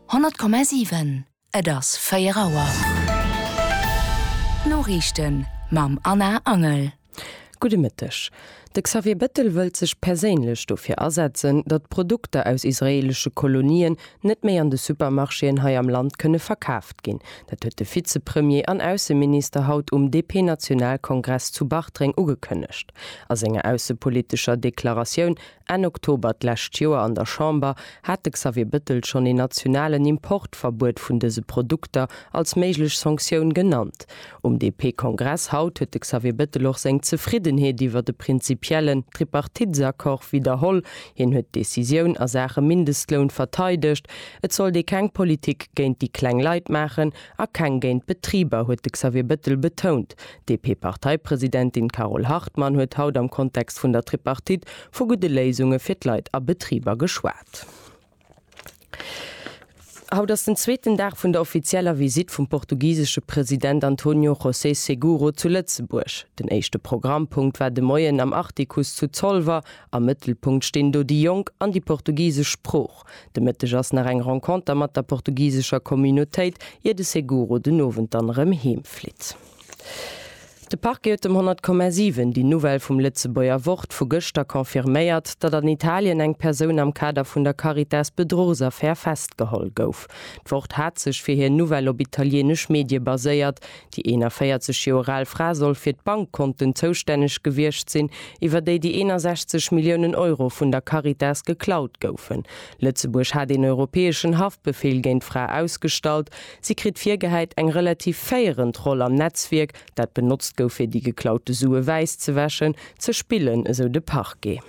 100,7 Et ass 4 Auer. D'Noriichten mam Anna Angel. Gudde Mëtteg. De Xavier Bettel wëllt sech perséinlech dofir asetzen, datt d'Produkter aus israeelesche Kolonien net méi an de Supermarchéen hei am Land kënne verkaaft ginn. Dat huet de Vizepremier an Ausseminister haut um DP-Nationalkongress zu Bartreng ugekënnegt. A senger aussepolitescher Deklaratioun Enn Oktober d'lescht Joer an der Chamber hat de Xavier Bettel schonn een nationalen Importverbuet vun dëse Produkter als méiglech Sanktioun genannt. Um DP-Kongress haut huet de Xavier Bettel och seng Zefriddenheet iwwer de prinzipiellen Tripartitesaccord widderholl. Hien huet d'Decisioun a Saache Mindestloun verteidegt. Et sollt ee keng Politik géint déi kleng Leit maachen a keng géint d'Betriber, huet de Xavier Bettel betount. D'DP-Parteipresidentin Carole Hartmann huet haut am Kontext vun der Tripartite vu gudde Léisunge fir d'Leit a Betriber geschwat. Haut ass den zweeten Dag vun der offizieller Visitt vum portugisesche President Antonio José Seguro zu Lëtzebuerg. Den éischte Programmpunkt war de Moien am Artikuss zu Zolwer. Am Mëttelpunkt stinn do déi Jonk an déi portugisesch Sprooch. De Mëtteg ass nach eng Renconter mat der portugisescher Communautéit, ier de Seguro den Owend dann erëm heem flitt. De Parquet huet dem 100,7 déi Nouvelle vum Lëtzebuerger Wort vu gëschter confirméiert, datt an Italien eng Persoun am Kader vun der Caritas-Bedruchsaffär festgeholl gouf. D'Wort hat sech fir hir Nouvelle op italieenesch Medie baséiert. Déi 41 Joer al Fra soll fir d'Bankkonten zoustänneg gewiescht sinn, iwwer déi déi 61 Milliounen Euro vun der Caritas geklaut goufen. Lëtzebuerg hat een europäeschen Haftbefeel géint d'Fra ausgestallt. Si kritt virgehäit, eng relativ féierend Roll am Netzwierk, dat benotzt gouf fir déi geklaute Sue wäisszewäschen, ze spillen, esou de Parquet.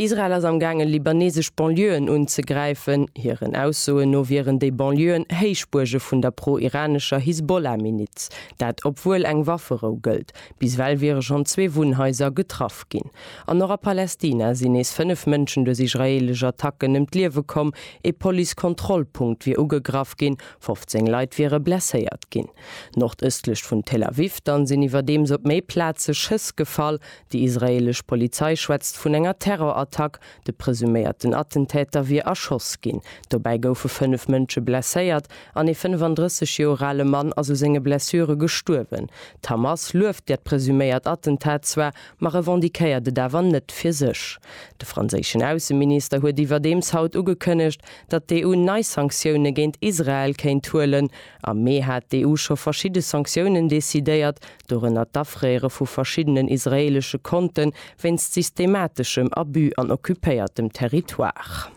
Israel ass am gaangen, libaneesesch Banlieuën unzegräifen. Hiren Aussoen no wieren déi Banlieuën Héichbuerge vun der pro-iranescher Hisbollah-Miliz. Dat obwuel eng Wafferou gëllt. Bis ewell wiere schonn zwee Wunnhaiser getraff ginn. An och a Palästina sinn nees fënnef Mënschen duerch israeelesch Attacken ëm d'Liewe komm. Ee Police-Kontrollpunkt wier ugegraff ginn, 15 Leit wiere blesséiert ginn. Nordëstlech vun Tel Aviv dann sinn iwwerdeems op méi Plaze Schëss gefall. Déi israeelesch Polizei schwätzt vun enger Terrorattack. De presuméierten Attentäter wier erschoss ginn. Dobäi goufe fënnef Mënsche blesséiert an ee 35 Joer ale Mann ass u senge Blessure gestuerwen. D'Hamas lueft dat presuméiert Attentat zwar, ma revendiquéiert et awer net fir sech. De franséischen Ausseminister huet iwwerdeems haut ugekënnegt, datt d'EU nei Sanktioune géint Israel kéint huelen. Am Mee hat d'EU scho verschidde Sanktiounen decidéiert, dorënner d'Afréiere vu verschiddenen israeelesche Konte wéinst systemateschem Abus an occupéiertem Territoire.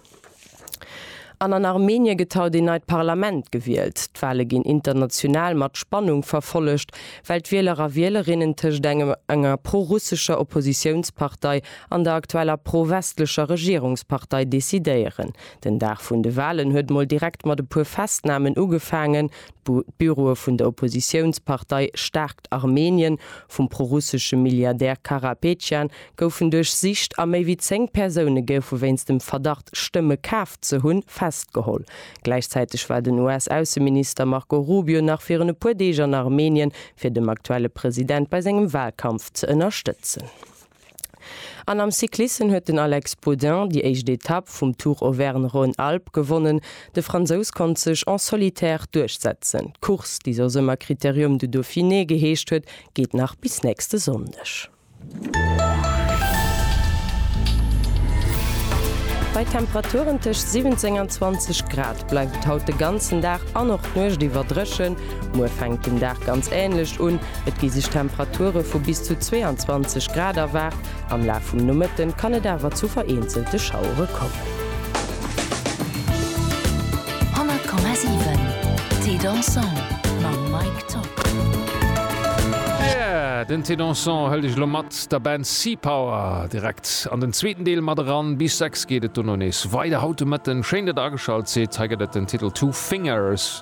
An an Armenien gëtt haut een neit Parlament gewielt. D'Wale ginn international mat Spannung verfollegt, well d'Wieler a Wielerinnen tëscht engem enger pro-russescher Oppositiounspartei an der aktueller pro-westlecher Regierungspartei decidéieren. Den Dag vun de Walen huet mol direkt mat e puer Festnamen ugefaangen, d'Büroe vun der Oppositiounspartei Stärkt Armenien vum prorussesche Milliardär Karapetjan goufen duerchsicht a méi wéi zéng Persoune goufe wéinst dem Verdacht, Stëmme kaf ze hunn, festgeholl. Gläichzäiteg war den US-Ausseminister Marco Rubio nach virun e puer Deeg an Armenien, fir dem aktuelle President bei sengem Walkampf ze ënnerstëtzen. An am Cyclissen huet den Alex Baudin déi éischt Etapp vum Tour Auvergne-Rhône-Alpes gewonnen. De Fransous konnt sech en solitaire duerchsetzen. D'Course, déi soss ëmmer Critérium du Dauphiné geheescht huet, geet nach bis nächste Sonndeg. Bei Temperaturen tëscht 17 an 20 Grad bleift et haut de ganzen Dag an och d'Nuecht iwwer dréchen. Muer fänkt den Dag ganz änlech un. Et gi sech Temperature vu bis zu 22 Grad erwaart, am Laf vum Nomëtten kann et awer zu vereenzelte Schauere kommen. 100,7 Thé dansant mam Mike Top. Yeah! Den Thé dansant hëlt iech elo mat der Band Sea Power direkt an den zweeten Deel mat eran. Bis 6 geet et dono nees weider haut de Mëtten. Schéin, datt der ageschalt sidd. Hei gëtt et den Titel Two Fingers.